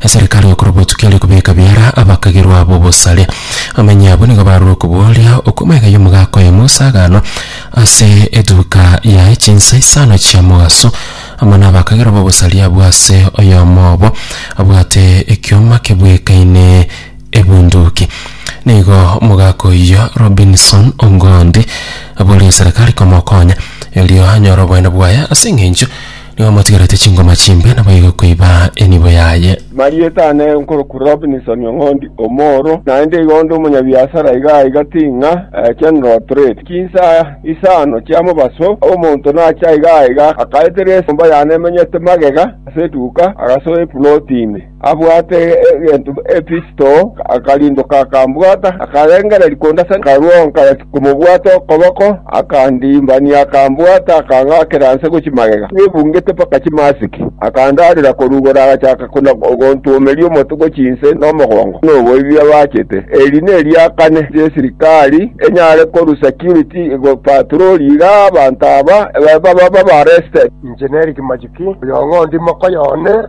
Eserekari y'okorwa botukia ere kobeka biara abakagirwa abo obosare. Abamenyi abwo nigo barure okobooria okwo amaiga y'omogaka oye Musa agano ase etuka yaye chinsa isano chia mogaso, amo nabakagirwa b'obosari abwo ase oyomo obo abwate ekioma kebwekaine ebunduki. Nigo omogaka oyio Robinson Ongondi aborie eserekari komokonya erio anyore oboene bwaye ase eng'encho Nigo motigarete chingoma chimbe, naboigo koiba enibo yaye. Marieta ane nkorokwa Robinson Ong'ondi omoro, naende igo onde omonyabiasara iga aiga ting'a General Trade. Chinsa isano chia mobaso omonto nacha iga aiga akaeterera esomba yane emenyete magega ase eduka agasoa epuloti ime. abwate egento Efisto akarindoka akambwata, akarengereria konde ase ekarwa nkareti komobwata okoboko, akandimbania akambwata akang'akera nse gochia magega, nebungete mpaka chimasiki, akandarera korugora agachaka kona ogontuomeria omote gochia inse na omogongo noboibi abachete. Eri neria kane y'esirikari enyare korua security egopaturori iga abanto aba babe babareste. Inche n'Eric Majuki, oyo ng'ondi moka y'one.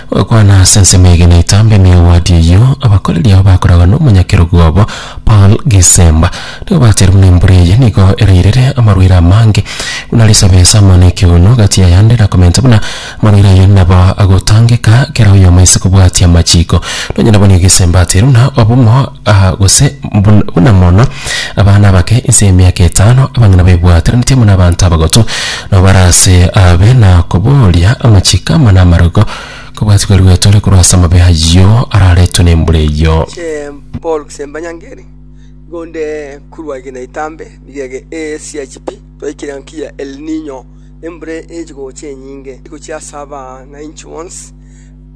Gokwana ase ensemo eye na etambe ime y'ewadi eyio, abakoreri ao bakoragwa n'omonyakerogo obo Paul Gisemba. Nigo bachire buna embura eye nigo erairire amarwaire amange buna risabesa amo n'ekeguno gati y'ayande na komenta buna amarwaire ayio nabo agotangeka kera oyomo ase kobwatia amachiko. Nonye nabonye Gisemba ateire buna obomo Aa, gose bun- buna mono abana abake inse y'emiaka etano, abang'ina baebwateranetie buna abanto abagotu, nabo bare ase abe na kobooria amachiko amo na amarogo, kobwatigwe erigeto ere korwa ase amabe ayio araretwe nembura eyio. Ee, Paul Kisemba Nyangeri, nigo onde korwa egena etambe, rigege ee siachi pi, twaikire ngaki ya El Niño, embura eche gocha enyinge, egochia ase abanainchi bonsi,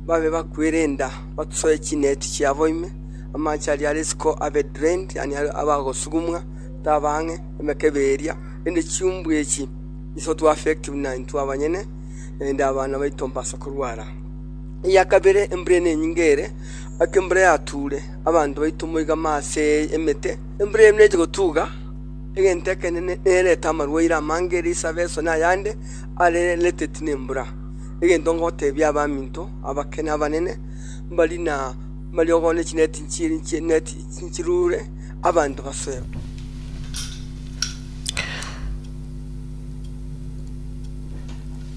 babe bakwere enda, batusoe chineti chiabo ime, Amache aria are isiko abe drained, yaani abe agosugumwa, tabe ang'e emekebe eria, rende chiumbu echi iso tube affective na intwe abanyene, naende abana baito mbase korwara. Eya kabere embura eye nenyinge ere, ake embura yature, abanto baito moiga ime ase emete, embura eye nechi gotuga, egento ekenene nerete amarwaire amange ere isabe eso na ayande are related nembura. Egento ngotebia abaminto abake na abanene, mbari na. Amariogo ne chineti nchiruure abanto basoe.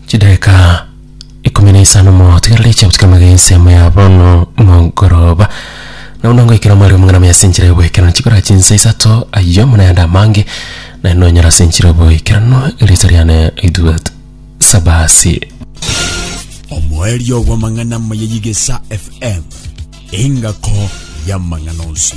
Chidaeka ikomi na isano motigerere iche gotukia magega ensemo ya bono mogoroba nabo nangoikera omwari omong'ina muna ase enchera y'oboikerano chikora chinsa isato ayio muna yande amange naende nonyora ase enchera y'oboikerano erieta riane ritubete Sabasi. Omoerio bw'amang'ana amaya y'Igesa FM, engako y'amang'ana onsi.